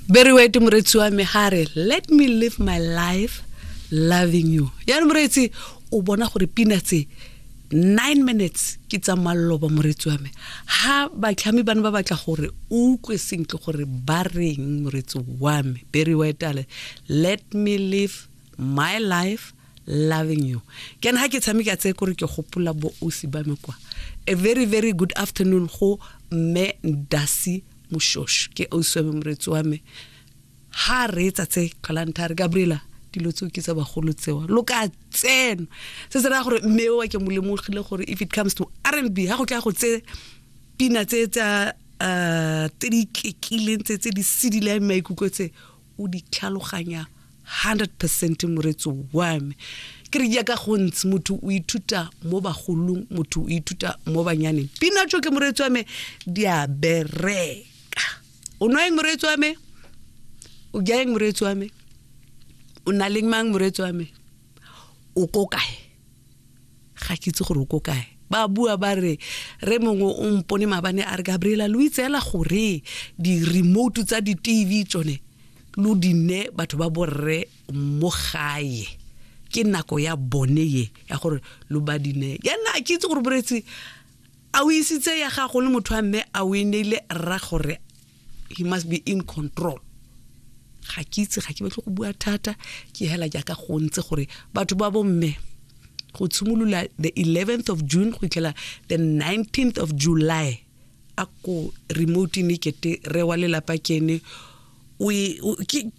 very wet moretsi wa me ga re let me live my life loving you yaanong moretsi o bona gore pina tse nine minutes ke tsa malloba moretsi wa me ga batlhami bane ba batla gore o utlwe sentle gore ba reng moretsi wa me very wet ale let me live my life loving you ke ha ke tshameka tse kore ke gopola bo osi ba me kwa a very very good afternoon go mme ndasi moshosho ke osi wa me moretsi wa me ha re etsa tse tlholanthare gabriela dilo tseo ke tsa bagolo tsewa lo ka tseno se se raya gore mme oa ke mo lemogile gore if it comes to r and b ga go tla go tse pina tse tsa um tse di iketlileng tse tse di sedileng maikutlo tse o di tlhaloganya 100 percent moretso wa me ke re jaaka gontsi motho o ithuta mo bagolong motho o ithuta mo banyaneng pina tso ke moretso wa me di a bereka o nwa eng moretso wa me o ja eng moretso wa me o na leng mang moretso wa me o ko kae ga ke itse gore o ko kae ba bua ba re re mongwe o mpone mabane a re gabriela lo itseela gore di-remote tsa di-tv tsone lo dinne batho ba borre mo gae ke nako ya bone ye ya gore lo ba dine ya nna ke itse gore boretsi a o isitse ya gago le motho wa mme a o e neile rra gore he must be in control ga ke itse ga ke batle go bua thata ke hela jaaka go ntse gore batho ba bomme go tshimolola the 11th of june go itlhela the 19th of july a ko remote ne kete re wa lelapa kene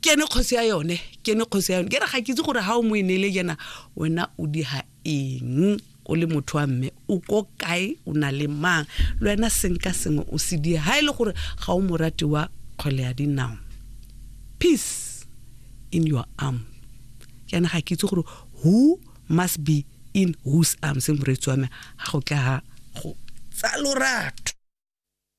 kene kgosi ya yone kene kgosi ya yone ke re ga ke itse gore ga o mo e neele jana wena o di ha eng o le motho wa mme o ko kae o na le mang le wena senka sengwe o se die ga e le gore ga o morati wa kgwele ya dinao peace in your arm jaana ga ke itse gore who must be in whose arms moreetsi wa me ga go tla ga go tsa lorato